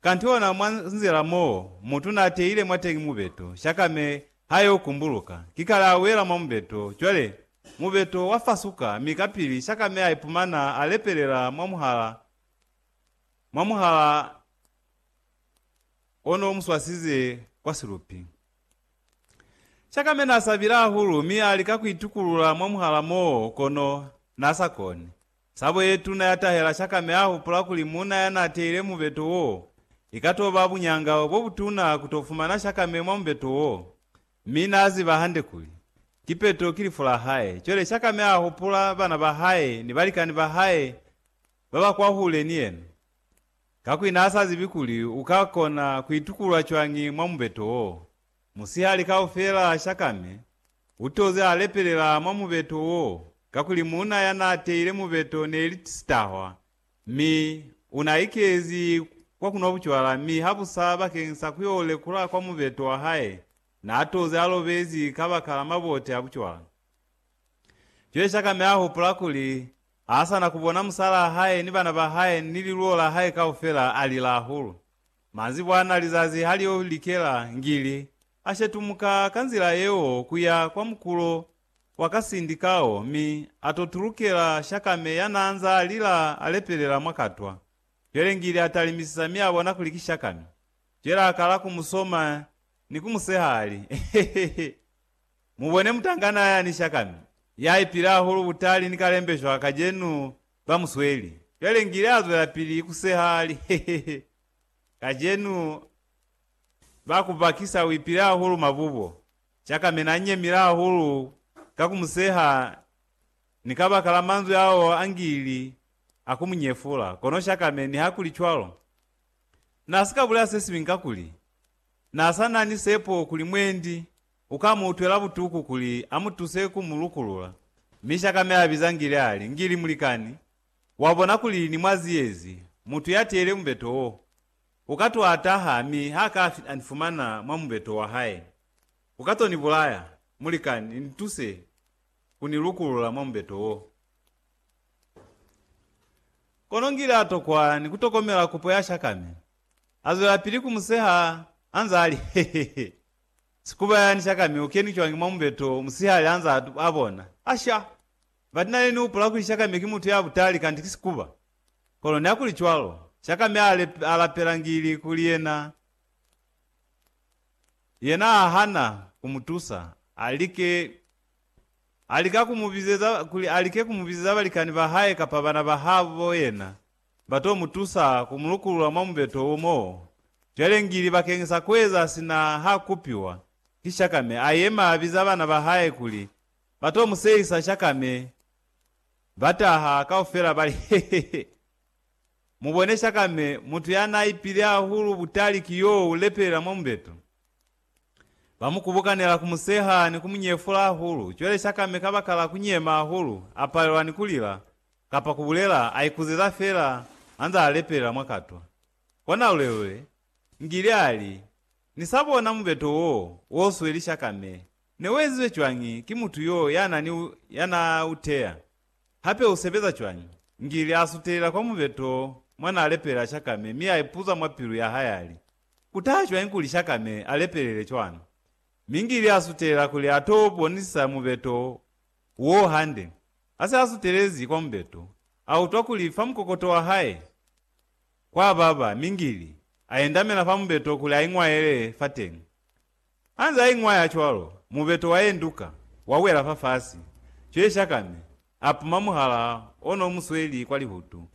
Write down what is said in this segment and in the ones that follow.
Kanti ona mwa nzila mo mutu na teile mwateñi mubeto, shakame ha yo kumbuluka, ki kale a wela mwa mubeto. Cwale, mubeto wa fasuka, mi kapili shakame a ipumana a lepelela mwa muhala, mwa muhala o no mu swasize kwa silupi. Shakame na sabile hahulu mi a lika ku itukulula mwa muhala moo, kono na sa koni. Sabo ye tuna ya tahela Shakame a hupula kuli muuna ya n'a teile mubeto wo, i ka t'o ba buñanga bo butuna ku t'o fumana Shakame mwa mubeto wo. Mi n'a ziba hande kuli, kipeto ki lifu la hae. Cwale Shakame a hupula bana ba hae ni balikani ba hae ba ba kwahule ni yena, kakuli n'a sa zibi kuli u ka kona ku itukulula cwañi mwa mubeto wo. Musihali kaufela Shakame utoze alepelela mwa mubeto wo, kakuli muuna yanaateile mubeto neli sitahwa, mi unaikezi kwa kunwa bucwala, mi habusa bakeng sa kuyo lekula kwa mubeto wahae naatoze alobezi kabakala mabote a bucwala. Cwale Shakame ahupula kuli haasana kubona musalaa hae ni bana bahae ni liluo lahae kaufela, alila hahulu. Manzibwana lizazi ha lio likela, ngili, a shetumuka ka nzila yeo ku ya kwa mukulo wa ka sindi kao mi a to tulukela Shakame ya n'a nz'a lila a lepelela mwa katwa. Cwale ngili a talimisisa mi a bona kuli ki Shakame. Cwale a kala ku mu soma ni ku mu seha a li, Hehehe! Mu bone mutangana yani Shakame, ya ipile hahulu butali ni kalembeshwa kacenu Ba mu sweli. Cwale ngile a zwelapili ku seha, a li, Hehehe, kacenu ba ku bakisa u ipile hahulu mabubo. Cakamena a nyemile hahulu ka ku mu seha ni kabakala manzwi ao a ngili a ku mu nyefula. Kono Shakame, nihakuli cwalo, na si ka bulela sesiñwi kakuli na sa na ni sepo kuli mwendi. U ka mu utwela butuku kuli a mu tuse ku mu lukulula. Mi shaka mi a biza Ngili a li, Ngili, mulikani, wa bona kuli ni mwa ziyezi, mutu ya teyile mubeto wo. U ka to a taha mi ha ka a ni fumana mwa mubeto wa hae, u ka to ni bulaya. Mulikani, ni tuse ku ni lukulula mwa mubeto wo. Kono Ngili a tokwa ni ku tokomela kupo ya shaka mi a zwelapili ku mu seha a nza a li, He-he-he! Sikuba yani shaka mi ukeni cwañi mwa mubeto musihali hanza a bona? Asha! But nane ni hupula kuli shaka mi ki mutu ya butali kanti ki sikuba. Kono neakuli cwalo. Shaka mi a lapela ngili kuli yena, yena ha hana ku mu tusa, a like, a lika ku mu bizeza, kuli a like ku mu bizeza balikani ba hae kapa bana ba habo yena Ba to mu tusa ku mu lukulula mwa mubeto wo mo cwale ngili bakeñisa kueza sina ha kupiwa ki shakame. A yema a biza bana ba hae kuli ba to mu sehisa shakame. Ba taha kaufela ba li, He, he, he! Mu bone shakame, mutu ya n'a ipile hahulu butali ki yo u lepelela mwa mubeto. Ba mu kubukanela, ku mu seha ni ku mu nyefula hahulu. Cwale Shakame kabakala ku nyema hahulu, a palelwa ni ku lila, kapa ku bulela, a ikuzeza feela anze a lepelela mwa katwa. Kona lulelule, Ngili a li, Ni sa bona mubeto wo, wo sweli Shakame. Ne u ezizwe cwañi ki mutu yo ya na ni, ya na u teya? Hape u sebeza cwañi? Ngili a sutelela kwa mubeto mwa na lepelela Shakame mi a ipuza mwa pilu ya hae a li, Ku taha cwañi kuli Shakane a lepelele cwalo? Mi Ngili a sutela kuli a t'o bonisa mubeto w'o hande. Ha se a sutelezi kwa mubeto, a utwa kuli fa mukokoto wa hae kwa baba, mi Ngili a endamela fa mubeto kuli a iñwaele fateñi. Anze aiñwaya cwalo, mubeto waenduka, wawela fafasi. Cweshakame apuma muhala ono umusweli kwa lihutu.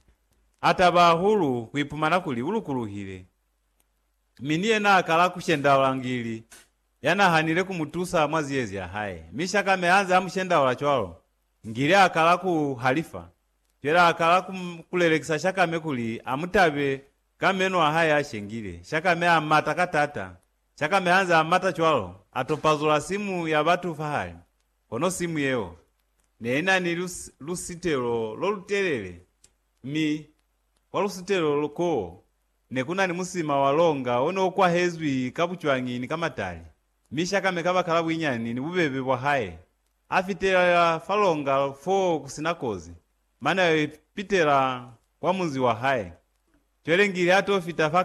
Ataba hahulu kuipumana kuli ulukuluhile, mi ni yena akala kushendaula ngili yanahanile kumutusa mwa ziyezi yahae. Mi Shakame anze amushendaula cwalo, ngili akala kuhalifa. Cwele akala kulelekisa Shakame kuli amutabe ka meno ahae ashengile. Shakame amata ka taata, Cakame hanze amata cwalo, atopazula simu ya batu fahali, kono simu yeo neinani lusitelo lolutelele, mi kwa lusitelo koo nekunani musima wa longa oneokwahezwi ka bucwangi ni ka matali, mi Cakame kabakala buinyani ni bubebe bwahae, afitelela fa longa foo kusina kozi, mane aipitela kwa munzi wahae. Cwelengili atofita fa